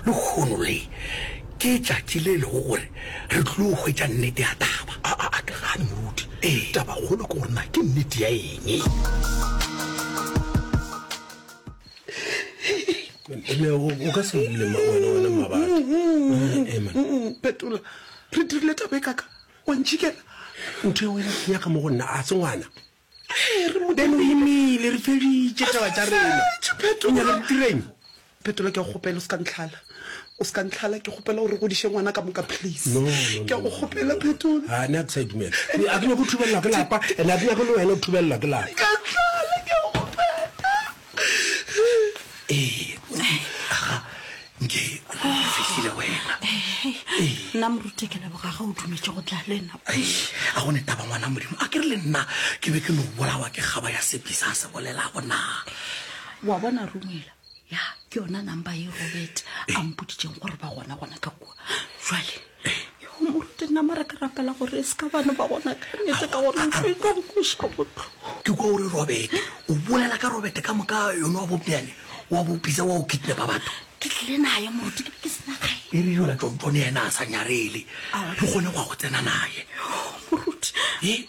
Lehono le, ke tšatši le lego gore re tlilo hwetša nnete ya taba. A, a, a ke gane, moruti. Ee. Tabakgolo ke gore na ke nnete ya eng? Mme, o, o ka se lle ma, wena, wena Mmabatho. Eh, eh, man. Phetola, re dirile taba e kaka, wa ntšhikela. Ntho ya wena ke nyaka mo go nna, a se ngwana? bene o imile re feditše taba tša rena o nyaka re direng phetola ke a go kgopela o se ka ntlhala o se ka ntlhala ke kgopela gore godiše ngwana ka moka please ke a go kgopela phetola ne a ke sa itumela a ke nyako thubelelwa ke lapa ene a ke nyako le wena o thubelelwa ke lapa nna morute ke leboga ga o dumetse go tla le nna a gone taba ngwana modimo a ke re le nna ke be ke no bolawa ke kgaba ya sepisa a se bolelago na wa bona rumela ya ke yona number e robert a mpoditseng gore ba gona gona ka kua jale Yo moruti nna mara ke rapela gore e se ka bana ba gona ka nnete ka gore ntho e tlo nkweša botlhoko. Ke kwa o re Robete, o bolela ka Robete ka moka yone wa bobjane wa bopisa wa o kidnapa batho. Ke tlile naye moruti ke be ke sena gae. E re yola tšontšone yena a sa nyarele re kgone go ya go tsena naye. Moruti. E.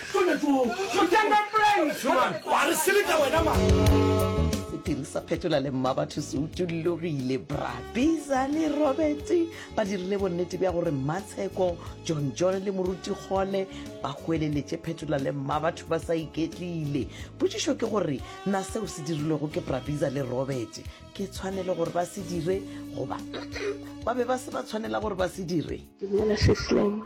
Sephiri sa Phetola le Mmabatho se utollogile. Bra Biza le Robert ba dirile bonnete bja gore Mmatsheko, John John le Moruti Kgole ba hweleletše Phetola le Mmabatho ba sa iketlile. Potšišo ke gore na seo se dirilwego ke Bra Biza le Robert ke tshwanelo gore ba se dire goba ba be ba se ba tshwanela gore ba se dire? Dumela Sis Lemo.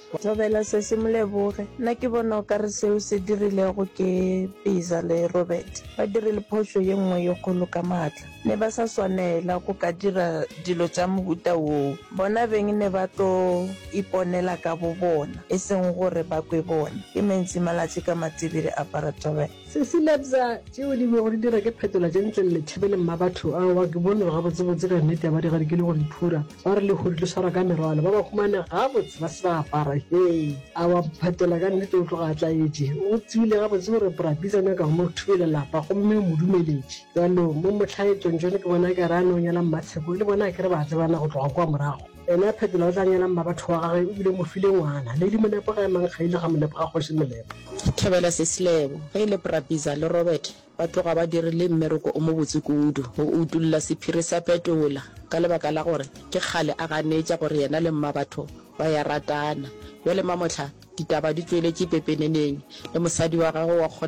Thobela sesi moleboge nna ke bona o kare seo se dirilego ke Pizza le Robert ba dirile phošo ye nngwe ye kgolo ka maatla ne ba sa swanela go ka dira dilo tša mohuta woo bona beng ne ba tlo iponela ka bobona e seng gore ba kwe bona ke mentsi malatši ka matibidi apara thobela. Sesi Lebza, tšeo di bego di dira ke phetola tše ntle le thibeleng ba batho a wa ke bone gabotsebotse ka nnete ya ba di gadikile go diphura ba re lehudi le swara ka merwalo ba ba humane gabotse ba se ba apara hee a wa phetola ka nnete o tloga a tlaetše o tsebile gabotse gore prabitsa nyaka go mo thubele lapa gomme o mo dumeletše bjalo mo motlhaetšong jone ke bona ka re a ne o nyala mmatsheko le bona ke re ba tsebana go tloga kwa morago Ena phetola o tla nyala mmabatho wa gage, o bile mo file ngwana. Lady Molepo ga e mang ga ile ga Molepo ga Kgoši Molepo. Thobela Seslebo, ge e le Prapisa le Robert ba tloga ba dirile mmereko o mobotse kudu go utulla sephiri sa Petola ka lebaka la gore ke kgale a ganetša gore yena le mmabatho ba ya ratana. Bjale mamohla ditaba di tsweletše pepeneneng le mosadi wa gagwe wa kgona